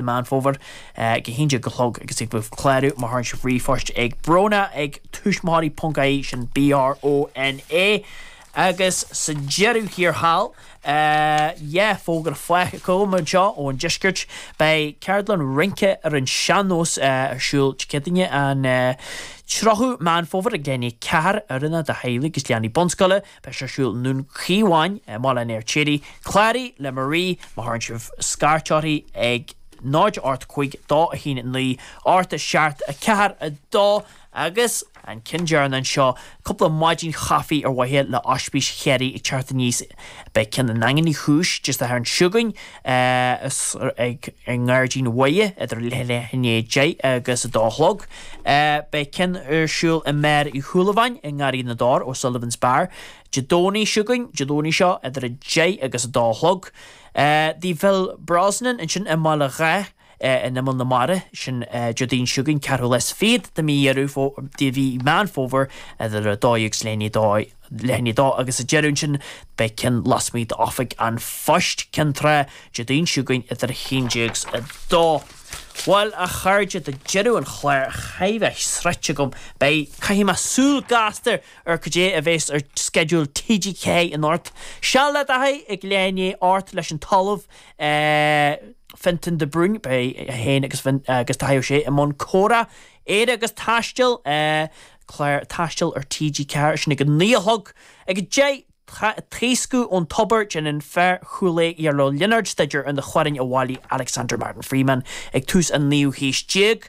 Meán Fómhair, ag 11 a chlog agus ag clárú má chuireann sibh ríomhphost ag Bróna ag tuismitheoirí ponc ie sin BRONA agus sa deireadh thiar thall, tá fógra faighte agam anseo ón deisceart, beidh ceardlann rince ar an sean-nós ar siúl Dé Céadaoine an 30ú Meán Fómhair ag leath i ndiaidh 4 oiriúnach do theaghlaigh agus leanaí bunscoile. Beidh sé ar siúl i nDún Chíomháin i mBaile an Fheirtéaraigh, cláraigh le Marie má chuireann sibh scairt uirthi ag 0 8 5 2 1 9 8 7 4 2 agus an ceann deireanach anseo cúpla maidin chaife ar mhaithe le Ospís Chiarraí ag teacht aníos beidh ceann i nDaingean Uí Chúis Dé Sathairn seo chugainn ag i nGairdín Mhuire idir leath i ndiaidh a 10 agus a dó a chlog. Beidh ceann ar siúl i mBeár Uí Shúilleabháin i nGarraí na dTor, O'Sullivan's Bar, Dé Domhnaigh seo chugainn, Dé Domhnaigh seo, idir a deich agus a dó a chlog. Tigh Phil Brosnan ansin i mBaile Dháith. in imeall na mara, sin Déardaoin seo chugainn, 4ú lá is fichead de mhí Dheireadh, de mhí Meán Fómhair, idir 12 agus leath i ndiaidh 2 agus sa deireadh ansin beidh ceann lasmuigh d'Oifig an Phoist, Ceann Trá, Déardaoin seo chugainn idir 11 's 2. Bhuel a chairde, tá deireadh an chláir chóir a bheith sroichte agam, beidh, caithfidh mé súil gasta ar cad é a bheas ar sceideal TG4 anocht. Seal le Dáithí ag leath i ndiaidh a hocht leis an tOllamh é Fionntán de Brún. Beidh é féin agus agus Dáithí Ó Sé i mbun comhrá, Éire agus Taisteal, clár taistil ar TG4, sin ag a naoi a chlog. Ag a deich, Taoscadh ón Tobar, déanann fear Chúil Aodha, Iarla Ó Lionáird, staidéar ar na hamhráin a bhailigh Alexander Martin Freeman ag tús an naoú haois déag.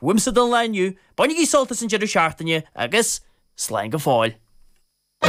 Uaimse don lá inniu, bainigí sult as an deireadh seachtaine agus slán go fóill.